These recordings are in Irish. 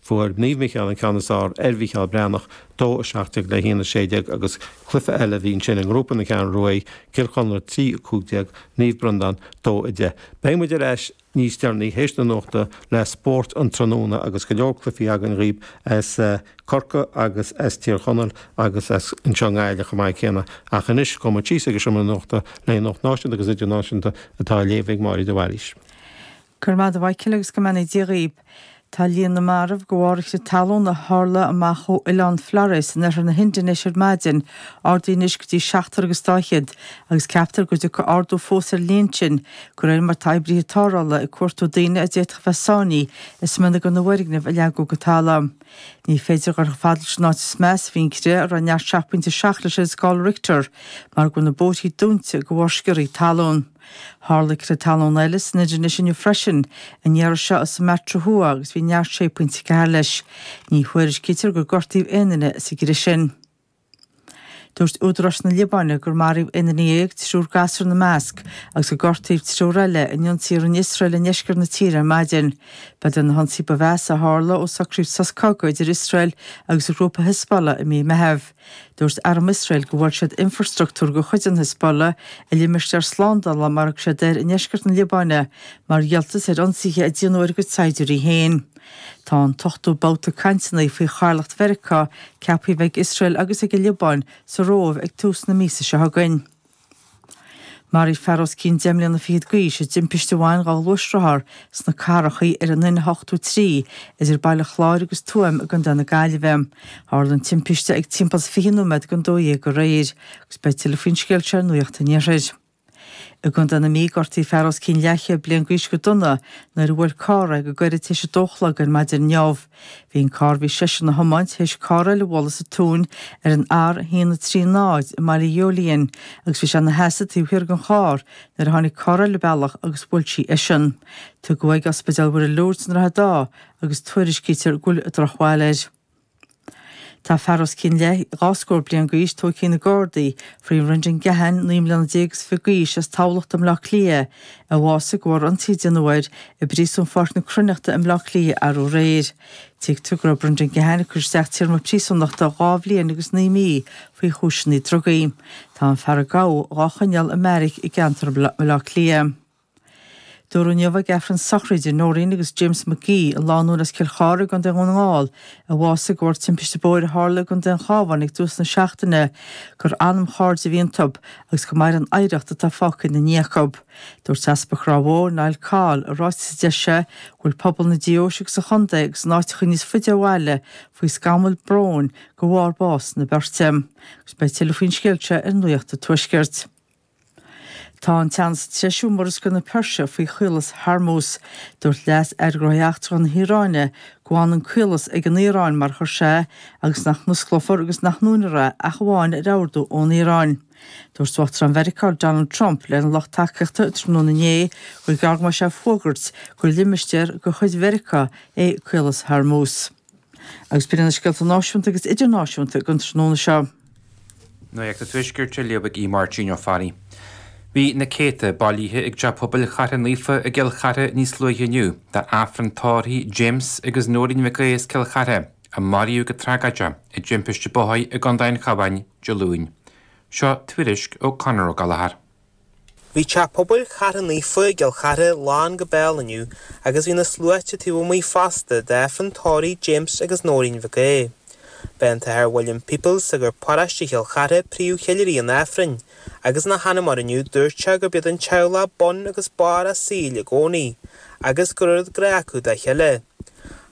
Fuair Naomh Micheál an ceann is fheárr ar Mhicheál Breathnach, dó 17 le 1 16, agus cluiche eile a bhí ansin i ngrúpa na Ceathrún Rua, Cill Chonla 3 15, Naomh Breandán, dó 10. Beidh muid ar ais níos deireanaí théis na nuachta le spórt an tráthnóna agus go leor cluichí againn dhaoib as Corcaigh agus as Tír Chonaill agus as an seo i nGaillimh chomh maith céanna ach anois gabhfaidh muid síos ag an seomra nuachta le Nuacht Náisiúnta agus Idirnáisiúnta atá á léamh ag Máiríd de Bhailís. Go raibh maith agat a Mhichael agus go mbeannaí Dia dhaoib. Tá líon na marbh de bharr chrith talún a tharla amach ó oileán Flores in oirthear na hIndinéise ar maidin ardaithe anois go dtí seachtar agus dá fhichead agus ceaptar go dtiocfaidh ardú fós ar an líon sin de réir mar tá oibrithe tarrthála ag cuartú daoine a d'fhéadfadh bheith sáinnithe i smionagar na bhfoirgneamh a leagadh go talamh. Ní féidir dhul chomh fada leis an áit is measa a bhí an crith a raibh neart 7.7 leis ar scála Richter mar go bhfuil na bóithrí dúinte de bharr sciorrthaí talún. Tharla crith talún eile san Indinéis inniu freisin, an iarraidh seo i Sumatra Thuaidh agus bhí neart 6.4 leis. Ní thuairiscítear gur gortaíodh aon duine sa gcrith sin. Dúirt údaráis na Liobáine gur maraíodh aon duine dhéag, triúr gasúr ina measc, agus gur gortaíodh triúr eile in ionsaithe a rinne Iosrael i ndeisceart na tíre ar maidin. Ba iad na hionsaithe ba mheasa a tharla ó socraíodh sos cogaidh idir Iosrael agus an grúpa Hezbollah i mí Meitheamh. Dúirt Arm Iosrael gur bhuail siad infreastruchtúr de chuid an Hizbollah i limistéar slándála, mar a thug siad air, i ndeisceart na Liobáine mar dhíoltas ar ionsaithe a déanadh ar a gcuid saighdiúirí féin. Tá an t-ochtú babhta cainteanna faoi chathaoirleacht Mheiriceá ceaptha a bheith ag Iosrael agus ag an Liobáin sa Róimh ag tús na míosa seo chugainn. Maraíodh fear os cionn deich mbliana fichead d'aois i dtimpiste a bhain dhá ghluaisrothar sna Carrachaí ar an N83 idir Baile Chláir agus Tuaim i gContae na Gaillimhe. Tharla an timpiste ag timpeall is fiche nóiméad don dó dhéag aréir agus beidh tuilleadh faoin scéal seo ar Nuacht an Iarthair. I gContae na Mí, gortaíodh fear os cionn leathchéad bliain d'aois go dona nuair a bhuail carr é go gairid tar éis a dó a chlog ar maidin inniu. Bhí an carr a bhí seisean a thiomáint théis carr eile a bhualadh sa tóin ar an R130 i mBaile Ghiollaín agus bhí sé ina sheasamh taobh thiar den charr nuair a tháinig carr eile an bealach agus bhuail sí eisean. Tugadh é ag Ospidéal Mhuire Lourdes i nDroichead Átha agus tuairiscítear go bhfuil drochbhail air. Tá fear os cionn leath dhá scór bliain d'aois tóigthe ag na Gardaí faoi Brendan Keahan, naoi mbliana déag is fiche d'aois, as Tamhlacht i mBleá Cliath, a bhásaigh de bharr ionsaí a déanadh air i bpríosún Pháirc na Cruithneachta i mBleá Cliath arú aréir. Tuigtear go raibh Brendan Keahan ag cur isteach téarma príosúnachta dhá bhliain agus naoi mí faoi chúiseanna drugaí. Tá an fear a gabhadh dhá choinneáil i mbeairic i gceantar Bhleá Cliath. Dúradh inniu ag Aifreann sochraide Noreen agus James McGee, an lánúin as Cill Chartha i gContae Dhún na nGall a bhásaigh de bharr timpiste bóthair a tharla i gContae an Chábháin ag tús na seachtaine, gur anamchairde a bhí iontu agus go mair an oidhreacht atá fágtha ina ndiaidh acu. Dúirt Easpag Ráth Bhoth, Niall Coll, i ráiteas a d'eisigh sé, go bhfuil pobal na deoise agus an chontae agus in áiteacha níos faide ó bhaile faoi scamall bróin de bharr bás na beirte, agus beidh tuilleadh faoin scéal seo ar Nuacht an Tuaiscirt. Tá an teannas ag treisiú i Murascaill na Peirse faoi Chaolas Hormuz. Dúirt Leas-Aire Gnóthaí Eachtracha na hIaráine go bhfanann an caolas ag an Iaráin mar chuir sé, agus nach n-osclófar agus nach ndúnfar é ach amháin ar ordú ón Iaráin. Dúirt Uachtarán Mheiriceá Donald Trump lena lucht tacaíochta tráthnóna inné gur gearr go mbeadh sé ag fógairt gur limistéar de chuid Mheiriceá é Caolas Hormuz. Agus b'in iad na scéalta náisiúnta agus idirnáisiúnta don tráthnóna seo. Nuacht an Tuaiscirt á léamh ag Máirtín Ó Fearraigh. Bhí na céadta bailithe ag Teach Pobail Chartha Naofa i gCill Chartha níos luaithe inniu d'Aifreann tórraimh James agus Noreen Mhic Aodha as Cill Chartha a maraíodh go tragóideach i dtimpiste bóthair i gContae an Chabháin Dé Luain. Seo tuairisc ó Conor Ó Gallchóir. Bhí Teach Pobail Chartha Naofa i gCill Chartha lán go béal inniu agus bhí na sluaite taobh amuigh fosta d'Aifreann tórraimh James agus Nóirín Mhic Aodha. B'é an tAthair William Peoples, sagart paróiste Chill Chartha, príomhcheiliúraí an Aifrinn, agus ina sheanmóir inniu dúirt sé gurb iad an teaghlach bun agus barr a saoil i gcónaí agus go raibh oiread grá acu dá chéile.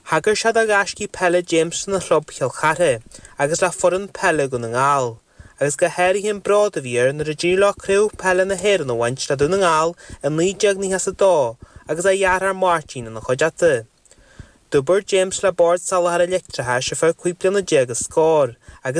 Thagair sé do ghaiscí peile James lena chlub Chill Chartha agus le foireann peile Dhún na nGall. agus go háirithe an bród a bhí air nuair a d'éirigh leo Craobh Peile na hÉireann a bhaint le Dún na nGall i 1992 agus a dheartháir Máirtín ina chuideachta. D'oibir James le Bord Soláthair an Leictreachais ar feadh cúig bliana déag is scór agus